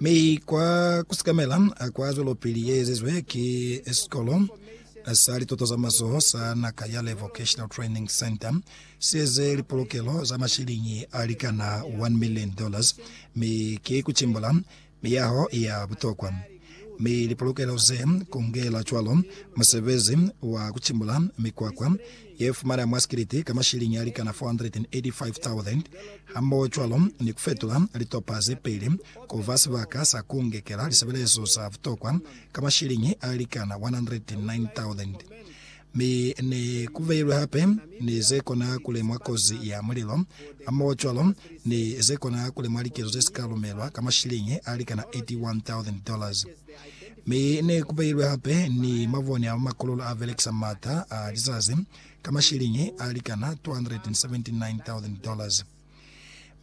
Mi kwa kusikamela kwa zwelopili ye ezizwe ki sikolo sa lituto za mazoho sa Nakayale Vocational Training Centre, si eze lipolokelo za mashiliñi a likana 1 million dollars, mi ki ku cimbula miyaho ya butokwa. Mi lipolokelo ze kungela cwalo musebezi wa ku cimbula mikwakwa ye fumana mwa sikiliti ka mashilingi a likana 485,000, hamohocwalo ni ku fetula litopa ze peli ku ba sibaka sa ku ngekela lisebelezo za butokwa ka mashilingi a likana 109,000. Mi ne ku beilwe hape ni ze kona ku lemwa kozi ya mulilo, hamohocwalo ni ze kona ku lemwa likezo ze si ka lumelwa ka mashilingi a likana 81,000 dollars. Mi ne ku beilwe hape ni mabone a makololo a belekisa mata a lizazi ka mashiliñi a likana $279,000 dollars.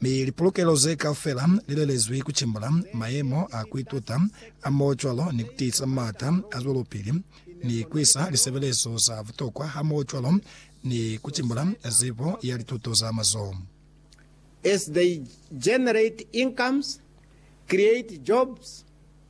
Mi lipolokelo ze kaufela li lelezwi ku cimbula mayemo a ku ituta a mo cwalo ni ku tiisa mata a zwelopili ni ku isa lisebelezo za butokwa hamoho cwalo ni ku cimbula zibo ya lituto za mazoho. As they generate incomes, create jobs,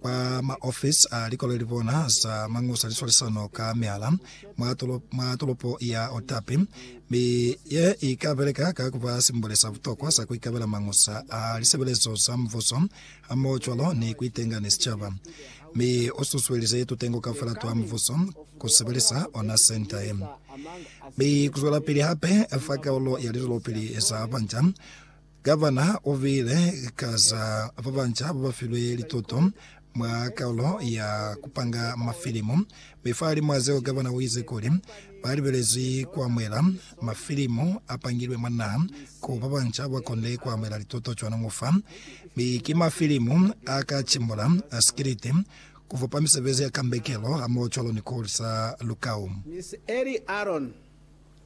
kwa maofisi a likoleli bona za mañusa liswalisano ka mihala mwa tolopo, mwa tolopo ya Otapi, mi ye i ka beleka ka ku ba simboli sa butokwa sa ku ikabela mañusa a lisebelezo za Mubuso hamoho cwalo ni ku itenga ni sicaba. Mi u susuelize tutengo kaufela twa mubuso ku sebelisa ona senta ye, mi ku zwelapili hape fa kaulo ya lizwelopili za banja. Gavana u buile ka za ba banca ba ba filwe lituto mwa Kaulo ya ku Panga Mafilimu. Mi fahalimw'a zeo gavana u ize kuli, Ba libelezwi ku amuhela mafilimu a pangilwe mwa naha ku ba banca ba konde ku amuhela lituto cwanoñu fa. Mi ki mafilimu a ka cimbula sikiliti, ku fupa misebezi ya kambekelo hamohocwalo ni ku hulisa lukau. Miss Ellie Aaron,